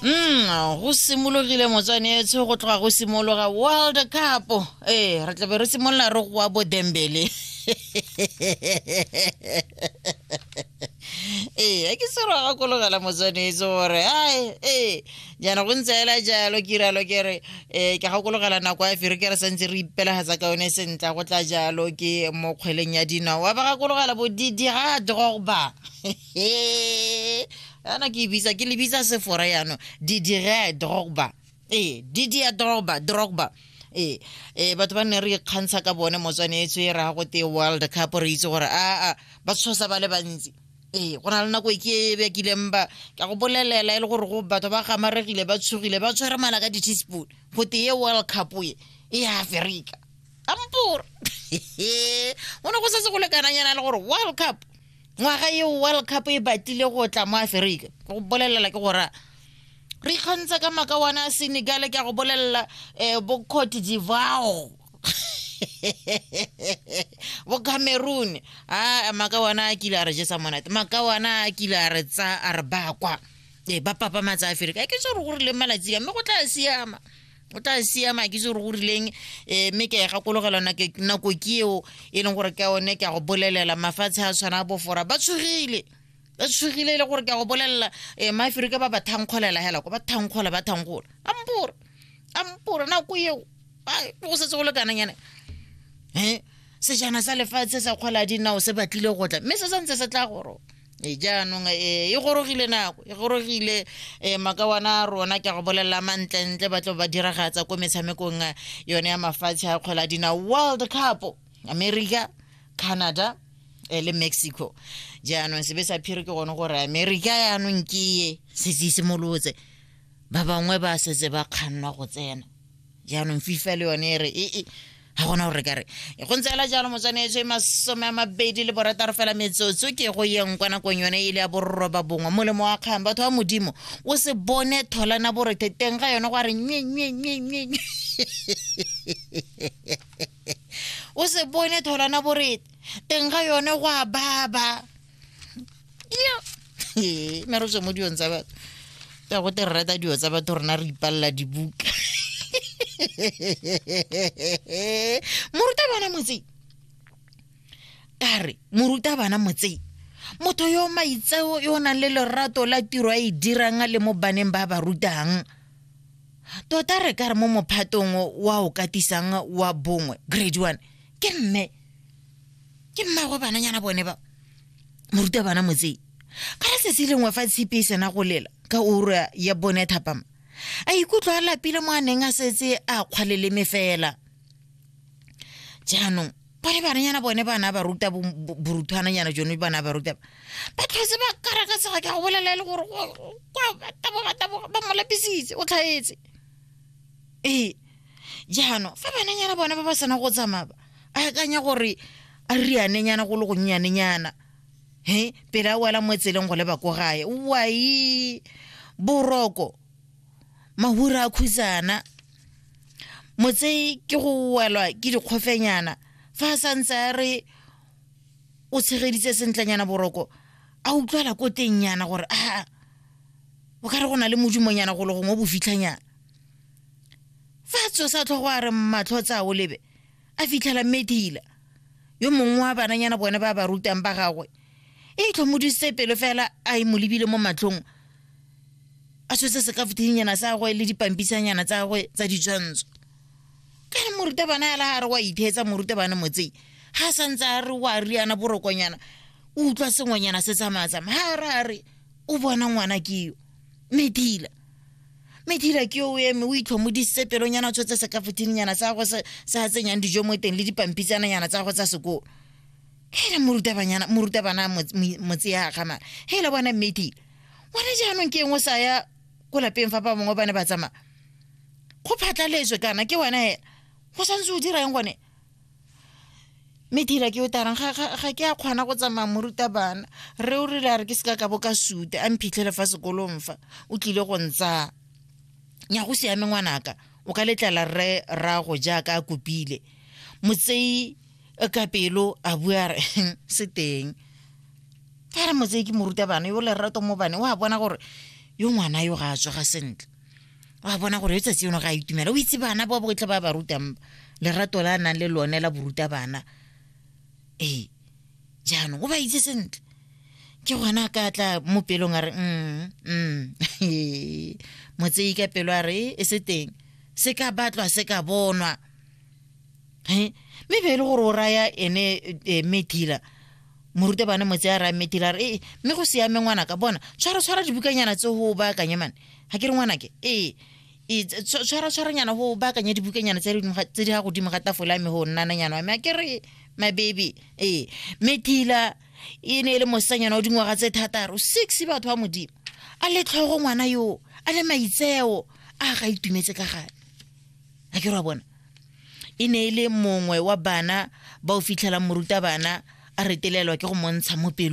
mm go simologile motswanetsho go tloga go simologa world cup ee re tlabe re simolola re goa bo dembele ee a ke se re gakologela motswanetso gore ai ee jaana go ntse ela jalo ke iralo ke re um ke gakologela nako ya fere ke re santse re ipelagatsa ka yone sentla go tla jalo ke mo kgweleng ya dinao wa ba gakologela bodidi ga drogba he ana ke e bitsa ke le bitsa sefora yano didire drogba ee didia drogba drogba ee ee batho ba nne re ikgantsha ka bone motswaneetso e raya gote world cup re itse gore aa ba tshosa ba le bantsi ee go na le nako e ke e bekileng ba ka go bolelela e le gore go batho ba gamaregile ba tshogile ba tshwere mala ka di-teaspoon gote ye world cup e e aferika ampore go ne go setse go lekananyana le gore world cup ngwaga eo world cup e batlile go tla mo aferika go bolelela ke gora re ikgantsha ka maka wana a senegale ke a go bolelela um bo cote divao bo cameroon a maka wana a kile a re jesa monate maka wana a kile a re tsa a re bakwa ee ba papa matsa aferika ke so re gore le malatsi ka mme go tla siama o tla siama ke itse gore go rileng um mme ke a e gakologelwa nako ke eo e leng gore ka one ke a go bolelela mafatshe a tshwana a bofora ba tshogile ba tshogile e le gore ke a go bolelela um eh, maaferika ba ba thankgolela hela ko ba thankgola ba thankgola ampore ampore nako eo go setse go lekananyane um eh, sejana sa lefatshe sa kgwala dinao se batlile go tla mme se santse se tla goro e jaanong e e gorogile nako e gorogile um makawana a rona ke a go bolelela mantlentle ba tlo ba diragatsa ko metshamekong eh, yone ya mafatshe a kgwela dina world cup america canada eh, le mexico jaanong sebe sa phiri ke gone gore america yaanong ke ye setse e simolotse ba bangwe ba setse ba kgannwa go tsena jaanong fifa le yone e re ee e, ga gona gore ka re e go ntse jalo motshwanetse masome a mabedi le borataro fela metsotso ke go yeng kwa nakong yone e le ya borroba bongwe molemo wa kgang batho ba modimo o se bone tholana borethe teng ga yone go a re nyenyenyenyenye o se bone tholana borete teng ga yone go a baba ee ne re tswe mo dilong tsa batho ya go te re rata dilo tsa batho rona re ipalela dibuka morutabana motseng ka re morutabana motseng motho yo maitseo yo o nang le lorato la tiro a e dirang a le mo baneng ba ba rutang tota re ka re mo mophatong wa o katisang wa bongwe grade one ke mme ke mmago bananyana bone ba moruta bana motsei ka re sesi lengwe fa tshipi e sena go lela ka ura ya bone thapama a ikutlwa a lapile mo a neng a setse a kgwaleleme fela jaanong bone bananyana bone bana ba ruta boruthwananyana jone bana ba ruta ba tlhotse ba kara ka tsega ke go bolela e le gore ba mo lapisitse o tlhaetse ee jaanong fa bananyana bone ba ba sena go tsamaya a akanya gore a rianenyana go le gonnyanenyana he pele a wela mo tseleng go leba ko gae wai boroko mahura a khusana motse ke go welwa ke dikgofenyana fa a santse a re o tshegeditse sentlenyana boroko a utlwala ko teng nyana gore a o ka re go na le modimonyana go le gongwe o bo fitlhanyana fa tso sa tlhogo a re matlho tsa o lebe a fitlhela medila yo mongwe wa bananyana bone ba ba rutang ba gagwe e tlhomodisitse pelo fela a e mo lebile mo matlhong a tshotse sekafuthinyana sa gagwe le dipampisanyana tsa gagwe tsa ditshwantsho ka re morutabana ya la a re wa itheetsa morutabana motsei ga sa ntse a re wa riana borokonyana o utlwa sengwenyana se tsamaya-tsamaya ga ra re o bona ngwana ke yo medila medira ke o eme o itlhomodisitse pelonyana tshotse se ka fothinyana sa go se a tsenyang dijo mo teng le dipampitsananyana tsa go tsa sekolo hele morutabanyana morutabana motse ya gamana hele bona mmedile ngwana jaanong ke engwe sa ya ko lapeng fa ba bangwe ba ne ba tsamaya go phatlaletswe kana ke wena hela go santse o dira eng gone mme thira ke o tarang ga ke a kgona go tsamaya morutabana re o rile a re ke seka ka bo ka sute a mphitlhele fa sekolong fa o tlile go ntsaya nya go siame ngwanaka o ka letlala rre rrago jaaka a kopile motseyi e ka pelo a bua re se teng ka re motseyi ke morutabana yo lerato mo bane o a bona gore yo ngwana yo ga a tsoga sentle wa bona gore letsatsi yono ga a itumela o itse bana ba botlhe ba ba rutang lerato la nang le lone la boruta bana ee jaanong o ba itse sentle ke gona ka tla mo pelong a re mm, mm. motsei ka pelo a re e se teng se ka batlwa se ka bonwa mme be e le gore o raya ene e, metila morutabana motse a raya metila a re ee mme go siame ngwana ka bona tshwara tshwara dibukanyana tse go baakanye mane ga ke re ngwanake ee e, tshwaratshwaranyana go baakanya dibukanyana tse di ga godimo ga tafola me go nnananyana wa me a ke re my baby ee me kila e ne e le mosanyana o dingwaga tse thataro six batho ba modimo a le tlhogo ngwana yoo a le maitseo a ga itumetse ka gane a ke re wa bona e ne e le mongwe wa bana ba o fitlhelang morutabana a retelelwa ke go montsha mo pelo